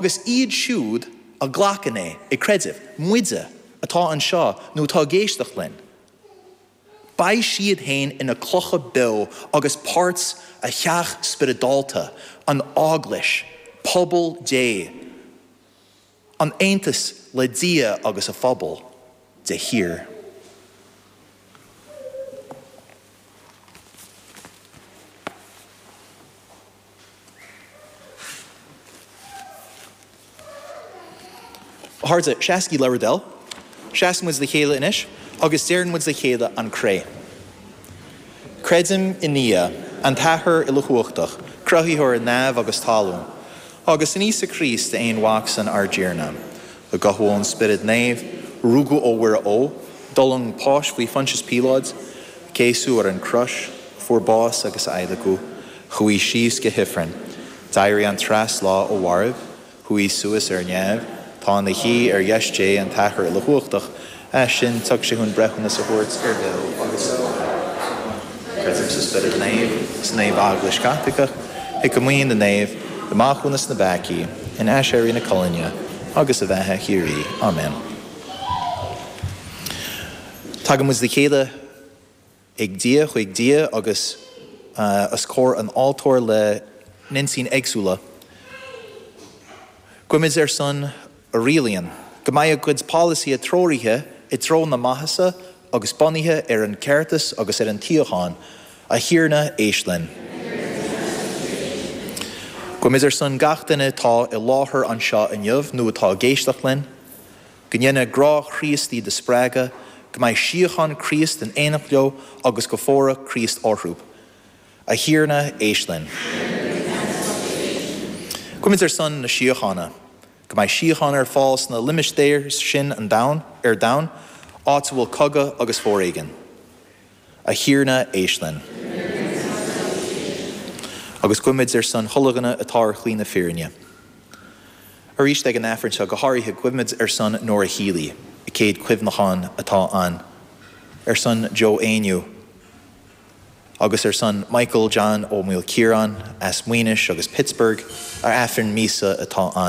agus iad siúd a ghlacann é ag creideamh, muide atá anseo nó atá ag éisteacht linn, beidh siad féin ina clocha beo agus páirt a theach spioradálta, an Eaglais, pobal Dé, in aontas le Dia agus a phobal de shíor. Harta, seasc i ladhar dl. Seasann muid le chéile anois agus deireann muid le chéile an Cré. Creidim i nDia, an tAthair uilechumhachtach, cruthaitheoir neimhe agus talún, agus in Íosa Críost, a aon Mhac san, ár dTiarna, a gabhadh ón Spiorad Naomh, rugadh ó Mhuire Ógh, d'fhulaing páis faoi Phointias Píoláid, céasadh ar an gcrois, fuair bás agus adhlacadh. Chuaigh síos go hifreann. D'éirigh an treas lá ó mhairbh. Chuaigh suas ar neamh. Tá ina shuí ar dheis Dé an tAthair Uilechumhachtach. As sin tiocfaidh sé chun breithiúnas a thabhairt ar bheo agus ar mhairbh. Creidim sa Spiorad Naomh, sa Naomh-Eaglais Chaitliceach, i gComaoin na Naomh, i Maithiúnas na bPeacaí, in Aiséirí na Colainne, agus an Bheatha Shíoraí. Amen. Tagann muid le chéile. ag Dia, chuig Dia agus os comhair an altóir le n-intinní éagsúla. Guímid ar son a rialaíonn. Go mbeidh a gcuid polasaithe treoraithe i dtreo na maitheasa agus bunaithe ar an gceartas agus ar an tsíocháin. A Thiarna, éist linn. Guímid ar son gach duine atá i láthair anseo inniu nó atá ag éisteacht linn. Go ndéana grá Chríost iad a spreagadh, go mbeidh síocháin Chríost in éineacht leo agus go bhfóire Críost orthu. A Thiarna, éist linn. Guímid ar son na síochána. Go mbeidh síocháin ar fáil sna limistéir sin an domhan ar domhan, áit a bhfuil cogadh agus foréigean. A Thiarna, éist linn. Agus guímid ar son iad uilig atá ar shlí na fírinne. Arís, ag an Aifreann seo, go háirithe, guímid ar son Nora Healy, a céad cuimhneachán atá ann, ar son Joe Éinniú, agus ar son Michael John Ó Maoilchiaráin as Maínis agus Pittsburgh, a Aifreann míosa atá ann.